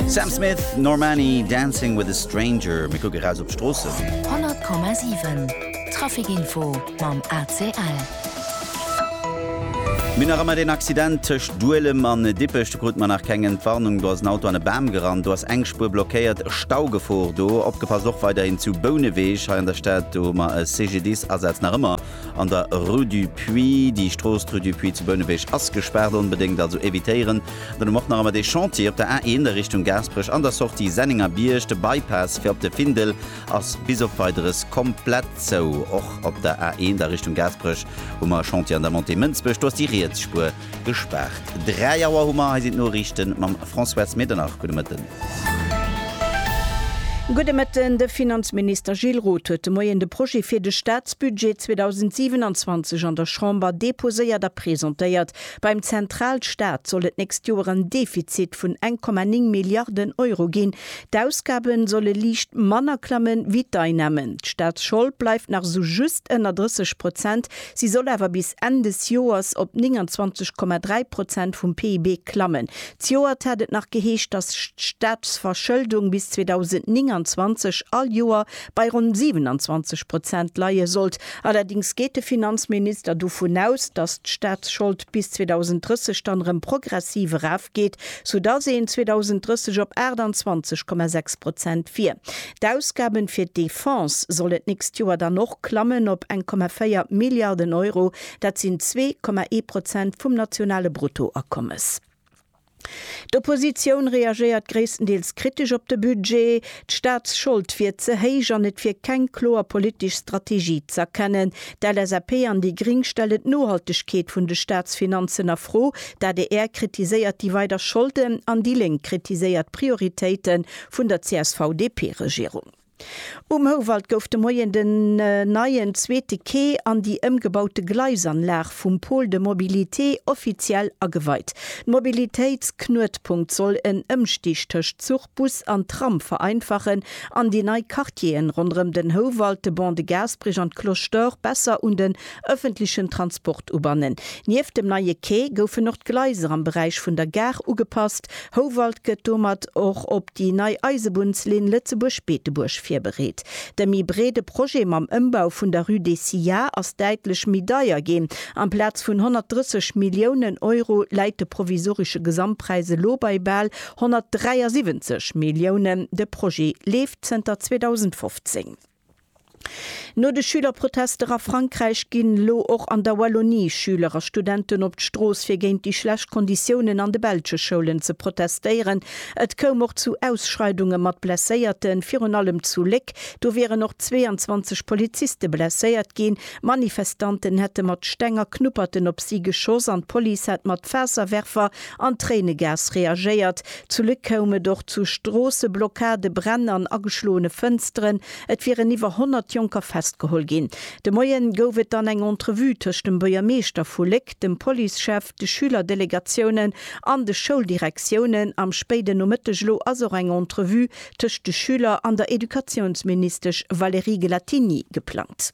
Sam Smith, Normani, Dancing with a Stranger, Mir kucke raus op d'Stroossen. 100,7 Traficinfo mam ACL. Mir nach ëmmer deen Accident tëscht Duelem an Dippech. Do krute mer nach keng Entwarnung. Do ass en Auto an e Bam gerannt. Do ass eng Spuer blockéiert. Staugefor do. Opgepasst och weiderhin zu Bouneweg hei an der Stad. Do hu mer e CGDIS-Asaz nach ëmmer an der Rue du Puits. Déi Strooss, d'Rue du Puits zu Bouneweg, ass gespaart. Onbedéngt also evitéieren. Dann hu mer och nach emmer dee Chantier op der A 1 a Richtung Gaasperech an der Sortie Sennenger Bierg. De Bypass fir op de Findel ass bis op Weideres komplett zou. Och op der A 1 a Richtung Gaasperech hu mer e Chantier an der Montée Mënsbech. Do ass déi riets Spuer gespaart. 3 Auer hu mer. Hei sinn d'Noriichte mam François S. Medernach. Gudde Mëtten. Gudde Mëtten. De Finanzminister Gilles Roth huet de Moien de Projet fir de Staatsbudget 2027 an der Chamber deposéiert a presentéiert. Beim Zentralstaat soll et d'nächst Joer en Defizit vun 1,9 Milliarden Euro ginn. D'Ausgabe solle liicht manner klamme wéi d'Einnamen. D'Staatsschold bleift nach sou just ënner 30 Prozent, si soll awer bis Enn des Joers op 29,3 Prozent vum PIB klammen. Zejoert hat et nach geheescht, datt d'Staatsverschëldung bis 2029 all Joer Bei ronn 27 Prozent leie sollt. Allerdéngs geet de Finanzminister dovun aus, datt d'Staatsschold bis 2030 dann erëm progressiv erafgeet, soudatt een 2030 op 28,6 Prozent wier. D'Ausgaben fir d'Defense sollen d'nächst Joer dann och klammen op 1,4 Milliarden Euro, dat sinn 2,1 Prozent vum nationale Bruttoakommes. D'Oppositioun reagéiert gréisstendeels kritesch op de Budget. D'Staatsschold wier ze héich an et wier keng kloer politesch Strategie z'erkennen. D'LSAP an déi Gring stellen d'Nohaltegkeet vun de Staatsfinanzen a Fro. D'ADR kritiséiert déi weider Scholden an déi Lénk kritiséiert d'Prioritéite vun der CSV-DP-Regierung. Um Houwald gouf de Moien den neien zweete Quai an déi ëmgebaute Gleisanlag vum Pôle de mobilité offiziell ageweit. D'Mobilitéitsknuetpunkt soll en Ëmstig tëscht Zuch, Bus an Tram vereinfachen an déi nei Quartieren ronderëm den Houwald, de Ban de Gaasperich an d'Cloche d'Or besser un den Ëffentlechen Transport ubannen. Nieft dem neie Quai goufen och d'Gleiser am Beräich vun der Gare ugepasst. Houwald gëtt domat och op déi nei Eisebunnslinn Lëtzebuerg-Beetebuerg virbereet. De méi breede Projet mam Ëmbau vun der Rue des Sillars ass däitlech méi deier ginn. Amplaz vun 130 Milliounen Euro läit de provisoresche Gesamtpräis elo bei bal 173 Milliounen. De Projet leeft zënter 2015. No de Schülerprotester a Frankräich ginn elo och an der Wallonie Schüler a Studenten op d'Strooss fir géint déi schlecht Konditiounen an de belsche Schoulen ze protestéieren. Et koum och zu Ausschreidunge mat Blesséierten, virun allem zu Léck, do wieren och 22 Poliziste blesséiert ginn. Manifestanten hätte mat Steng a Knupperten op si geschoss an d'Police hätt mat Faasserwerfer an Tréinegas reagéiert. Zu Luc koum et och zu Stroosseblockade, Bränn an ageschloene Fënsteren. Et wieren iwwer 100 Jonker festgeholl ginn. De Moien gouf et dann eng Entrevue tëscht dem Buergermeeschter vu Léck, dem Policechef, de Schülerdelegatioune an de Schouldirektiounen. Am spéiden Nomëtteg elo ass och eng Entrevue tëscht de Schüler an der Educatiounsministesch Valérie Gelatigny geplangt.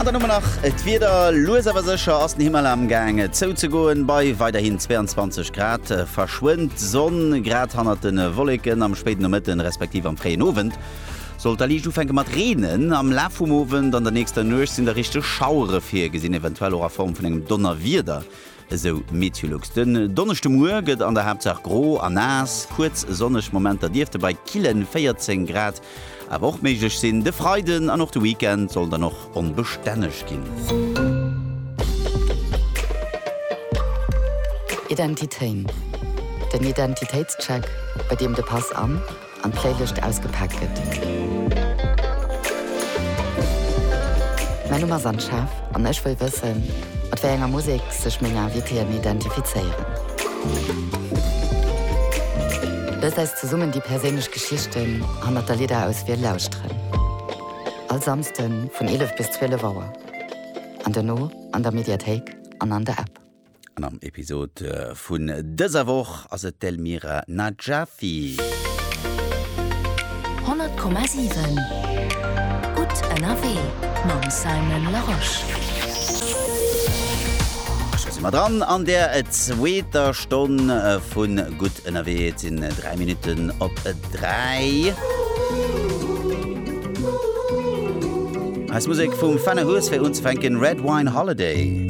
An dann hu mer nach d'Wieder. Lues awer sécher ass den Himmel am Gaang zouzegoen. Bei weiderhin 22 Grad verschwënnt d'Sonn grad hannert de Wolleken. Am spéiden Nomëtten, respektiv am fréien Owend sollt da liicht ufänke mat reenen. Am Laf vum Owend an der nächster Nuecht sinn da richteg Schauere virgesinn, eventuell och a Form vun engem Donnerwieder. esou Meteolux. Den Donneschde Muer gëtt an der Haaptsaach gro a naass, kuerz sonneg Momenter dierfte bei kille 14 Grad awer och méiglech sinn. De Freiden an och de Weekend sollen dann och onbestänneg ginn. Identitéin, den Identitéitscheck, bei deem de Pass an. an d'Fréilicht ausgepaakt gëtt. Mäin Numm ass Anne Schaaf an ech wëll wëssen, mat wéi enger Musek sech meng Invitéen identifizéieren. Loosst eis zesummen déi perséinlech Geschichten hannert der Lidderauswiel lauschteren. All Samsden vun 11 bis 12 Auer an dono an der Mediathéik an an der App. An am Episod vun dëser Woch ass et d'Elmira Najafi. 100,7 Gutt ënnerwee mam Simon Larosche. Scho si mer dran an der zweeter Stonn vu Gutt ënnerwee. Et sinn 3 Minutten op 3. Eis Musek vum Fenne Hues fir unzefänken, Red Wine Holiday.